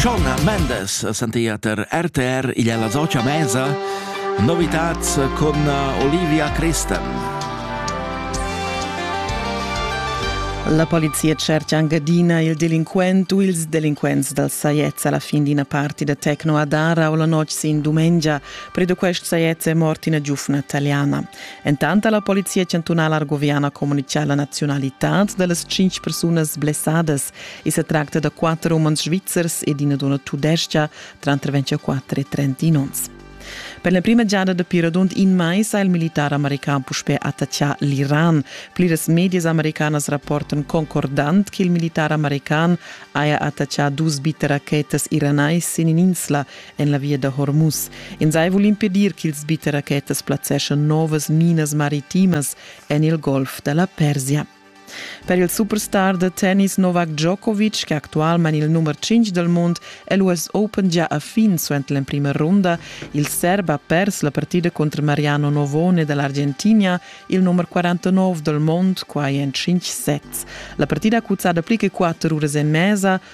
Shona Mendes sentia ter RTR igl alla socia mesa Novitats con Olivia Christen. La polizia cerca Angadina il delinquent u ils delinquents dal Saiez alla fin d'ina parti da Tecno Adara o la notg sin dumengia. Predo quest Saiez è mort ina giufna italiana. Entant la polizia chantunala argoviana comunica la nazionalitad da las cinc persunas blessadas I sa tracta da quatter umans svizzers ed ina dunna tudestga, tranter 24 e 31 onns. Per l'emprima giada dapi radund in mais ha il militar american puspè attaccà l'Iran. Pliras medias americanas rapportan concordant che il militar american haja attaccà dus bitterachetas iranais sin in'insla en la via da Hormuz. Ins hai vul impedir ch'ils bitterachetas plazzeschan novas minas maritimas en il golf da la Persia. Per il superstar da tennis Novak Djokovic, che actualmain il nummer 5 dal mund, è l'US Open gia a fin suenter l'emprima runda. Il serb ha pers la partida contro Mariano Novone dall'Argentina, il nummer 49 dal mund, quai en 5 sets. La partida ha cuzzada pli che 4 uras e mesa,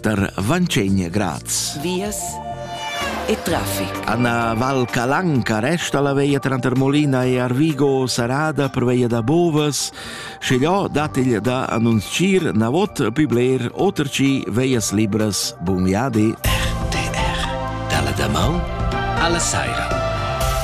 tar Vancegna Graz. Vias e traffic. Anna Val Calanca resta la veia tranter Molina e Arvigo sarada per veia da Bovas. Scegliò datigl da annunzir na vot più bler oter ci veias libras. Bun viadi. RTR. Dalla damau alla saira.